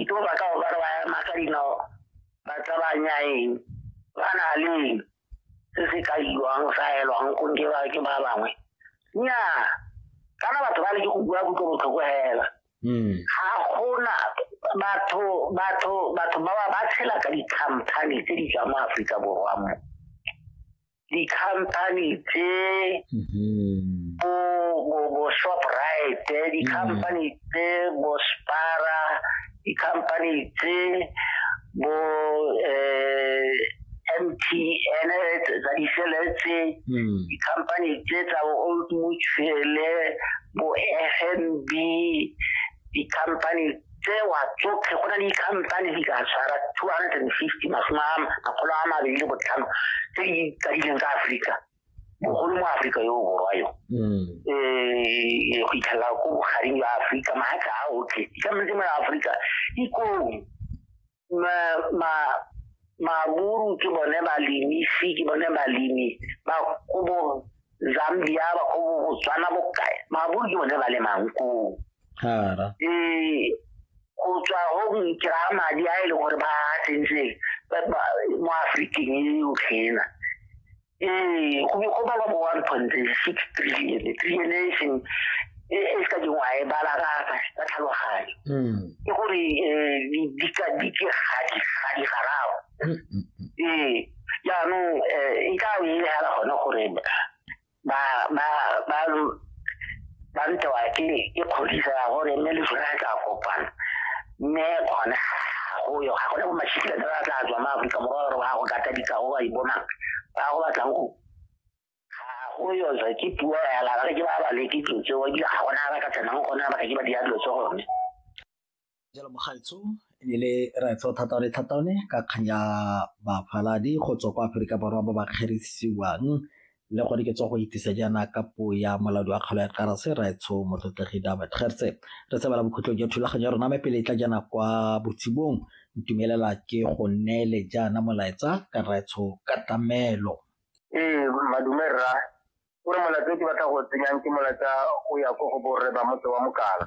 ito ba ka ba re ba ya maka dino ba tla ba nyaeng ba na le se se ka iwang sa elwang go nke ba ke ba bangwe nya kana batho ba le ke go bua go botlhoko hela hmm. ga gona batho batho batho ba ba tshela ka di-company tse di tswa mo aforika borwa mo di-company tse mm-hmm. bo bo bo shoprite eh, di-company mm. tse bo spara di-company tse bo eh MTN tsa diseletse mm. di-company tse tsa bo old mutual bo FNB di-company tsewa tsotlhe go na le dikhamphane di ka tshwara two hundred and fifty masome a makgolo a mabedi le botlhano tse di tsadileng ka aforika bogolo mo aforika yo o borwa yo um go itlhelela ko bogareng jwa aforika maatla a otlhe dikamane tse mo aforika ikong maburu ke bone balemi fi ke bone balemi ba ko bo zambia ba ko bo botswana bokae maburu ke bone ba le mankoo ee go tswa go kry-a madi a e leng gore ba tsentseng mo aforikeng e yotlhena ee go go bala mo one point six trillion trillion e seng e, e se ka dingwa e bala ka ka tlhaloganyo hmm. ke gore um di ka di ke ga di ga di garago hmm, hmm, ee jaanong um e ka e hela gone gore ba ba ba bantewa ke ke kgodisa ya gore mme le sone tla kopana mme gone go yo ga gone bomashitlhe tsa ba tla tswa ma aforika borwa gore ba go kata dikago ba ibonang ba go batlang go go yo tswa ke puo ya la ke ba ba le ke tsotse wa di ga gona ba ka tsenang gona ba ke ba di adlo tse gone Jalo mogaetsho e ne le raetsho thatane thatane ka kgang ya bafaladi go tswa kwa aforika borwa ba ba kgerisiwang le gone ke tswa go itisa jaana ka puo ya molaodi wa kgalo ya karase raetsho motlotlegi david gerse re tsebela bokhutlong jwa thulaganyo ya rona mme pele e tla jaana kwa botshibong ntumelela ke go neele jaana molaetsa ka raetsho katamelo ee madume rra o re molaetsa o ke batla go tsenyang ke molaetsa o ya ko go borre ba motse wa mokala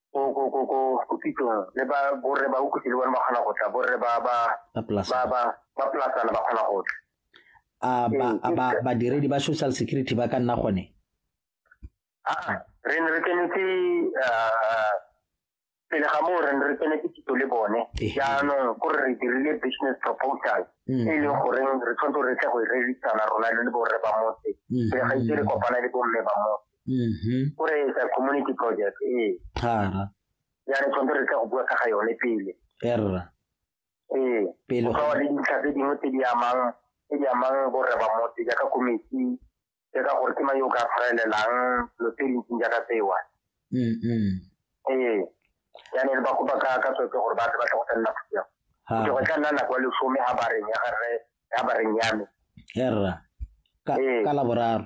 ko pitong le ba borre ba ukwisi le bone ba kgona go tla borre ba ba ba polasana ba kgona go tla a ba a ba badiredi ba social security ba ka nna gone a re ne re kenetse pele ga moo re ne re tsene ke kitso le bone jaanong ko re re dirile business proposal mm. e leng goreng re tshwanetse re tle go e rerisana rona le le borre ba motse mm. pele ga itse re kopana le bomme ba motse Mhm. o re it's a community project ee thara ya re tshwanetse re tla go bua ka ga yone pele erra ee Pele go go- tla le dintlha tse dingwe tse di amang tse di amang borre ba motse jaaka komiti jaaka gore ke mang yo o ka tshwarelelang dilo tse dintseng jaaka tsewa Mm-mm. ee jaanong re ba kopa ka ka tswetse gore ba tle ba tle go tsenela thuto ya Ha, ke go tla nna nako ya lesome ga bareng ya garre ya bareng ya me erra ka Ee. ka laboraro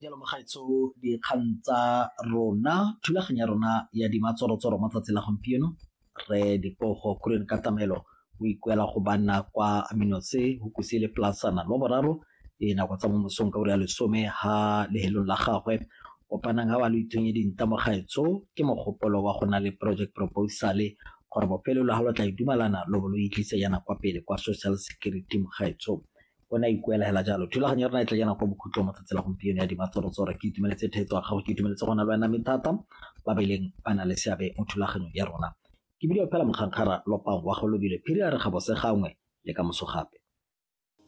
jalo mogaetso dikgang tsa rona thulaganyo ya rona ya dimatsorotsoro mo tsatsi la gompieno re dipogo kureng ka tamelo o ikuela go banna kwa aminotse go kuse le plasana lwa boraro e nako tsa mo mosong ka ura ya lesome ha lehelong la gagwe kopanang ga ba lo ithonye dinta mogaetso ke mogopolo wa go na le project proposal gore bofelelo ga lo tla idumalana lo bo lo itlise yana kwa pele kwa social security mogaetso o ne a ikuela hela jalo thulaganyo ya rona e tla jana kwa bokhutlong mo tsatsi la gompieno ya dimatsorotsoro ke itumeletse theetso ya gago ke itumeletse gona le wena mme thata ba beleng ba na le seabe mo thulaganyong ya rona ke bidio fela mokgankgara lopang wa go lobile phiri a re ga bose gangwe le ka moso gape